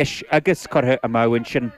Is agus curtha amach ansin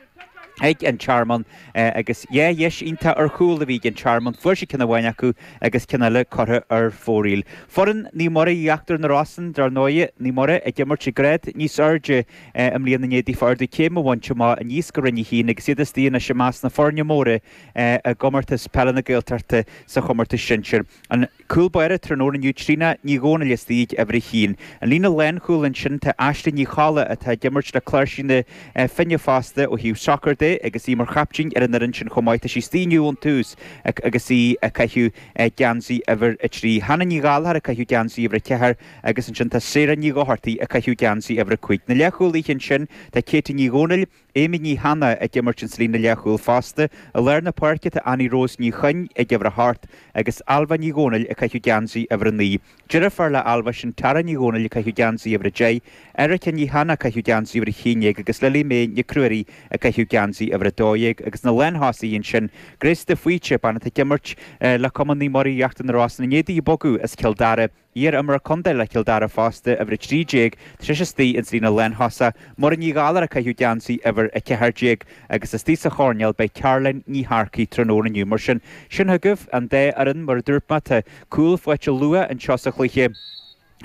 ag an Tearmann agus dhá dheis iontach ar chúl a bhí ag an Tearmann. Fuair sé ceann amháin acu agus ceann eile curtha ar fóraoil. Foireann Naomh Muire Íochtar na Rosann, dar ndóigh, Naomh Muire ag imirt ag grád níos airde i mbliana i ndiaidh daofa ardú céime a bhaint amach aníos go Roinn a hAon agus iad istigh anois i measc na foirne móra i gComórtas Peile na Gaeltachta sa chomórtas sinsear. An. Cúl báire tráthnóna inniu Tríona Ní Dhomhnaill istigh ag uimhir a haon an líne lánchúil ansin tá Aisling Ní Cholla atá ag imirt le Cláirsigh na Finne fosta ó thaobh sacair de agus í mar chaiptín ar an fhoireann sin chomh maith tá sí istigh inniu ón tús agus í ag caitheamh geansaí uimhir a trí Hannah Ní Ghallachair ag caitheamh geansaí uimhir a ceathair agus ansin tá Sarah Ní Dhochartaigh ag caitheamh geansaí uimhir a cúig na leathchúlaithe ansin tá Katie Ní Dhomhnaill Amy Ní hAnnaidh ag imirt ins an líne leathchúil fosta. I lár na páirce tá Annie Rose Ní Chuinn ag uimhir a hocht agus Ailbhe Ní Dhomhnaill ag caitheamh geansaí uimhir a naoi. Deirfiúr le Ailbhe sin Tara Ní Dhomhnaill ag caitheamh geansaí uimhir a deich, Erika Ní hAnnaidh ag caitheamh geansaí uimhir a haon dhéag agus Lily Mae Nic Ruairí ag caitheamh geansaí uimhir a dó dhéag agus na lánthosaithe ansin Grace De Faoite, bean atá ag imirt le Cumann Naomh Muire Íochtar na Rosann i ndiaidh di bogadh as Cill Dara. Iar-imreoir contae le Cill Dara fosta, uimhir 13, tá sí istigh ins an líne lántosaigh, Muireann Ní Ghallachair ag caitheamh geansaí uimhir 14, agus istigh sa choirnéal beidh Caroline Ní Shearcaigh tráthnóna inniu. Mar sin, sin agaibh an dá fhoireann. Mar a dúirt mé, tá cúl faighte luath anseo sa chluiche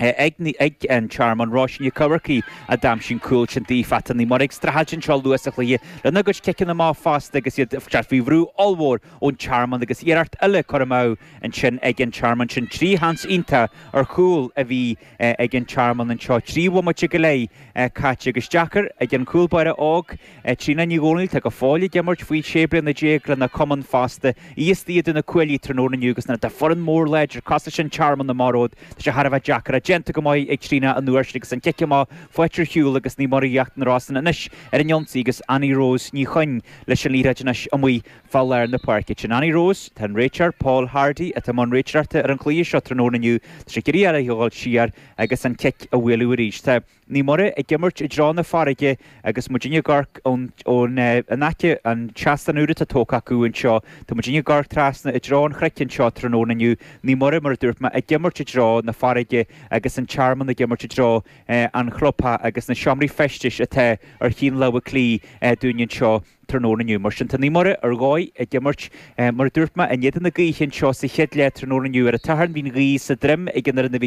ag an Tearmann, Róisín Nic Eachmharcaigh a d'aimsigh an cúl sin daofa, tá Naomh Muire ag streachailt anseo luath sa chluiche lena gcuid ciceanna amach fosta agus iad faoi bhrú ollmhór ón Tearmann agus iarracht eile curtha amach ansin ag an Tearmann sin. Trí sheans iontach ar chúl a bhí ag an Tearmann anseo. Trí bhomaite go leith caite agus deacair ag an gcúl báire óg, Tríona Ní Dhomhnaill. Atá go fóill ag imirt faoi sé bliana déag lena cumann fosta. Í istigh idir na cuaillí tráthnóna inniu agus nuair atá foireann mór láidir cosúil leis an Tearmann amach romhat, tá sé thar a bheith deacair é. Déanta go maith ag Tríona an uair sin agus an cic amach faighte ar shiúl agus Naomh Muire Íochtar na Rosann anois ar an ionsaí agus Annie Rose Ní Chuinn leis an liathróid anois amuigh. Fá lár na páirce sin Annie Rose, tá an réiteoir Paul Hardy, atá i mbun réiteoireachta ar an chluiche seo tráthnóna inniu, tá sé ag iarraidh uirthi a ghabháil siar agus an cic a bhualadh arís. Tá Naomh Muire ag imirt i dtreo na farraige agus muid ag amharc ón in aice an tseastán úr atá tógtha acu anseo. Tá muid ag amharc trasna i dtreo an chnoic anseo tráthnóna inniu. Naomh Muire, mar a dúirt mé, ag imirt i dtreo na farraige agus An Tearmann ag imirt i dtreo an chlubtheach agus na seomraí feistis atá ar thaobh na láimhe clí dúinn anseo. Tráthnóna inniu, mar sin, tá Naomh Muire ar ndóigh ag imirt. Mar a dúirt mé in éadan na gaoithe anseo sa chéad leath, tráthnóna inniu ar an tSatharn, bhí an ghaoth sa droim ag an fhoireann a bhí ag.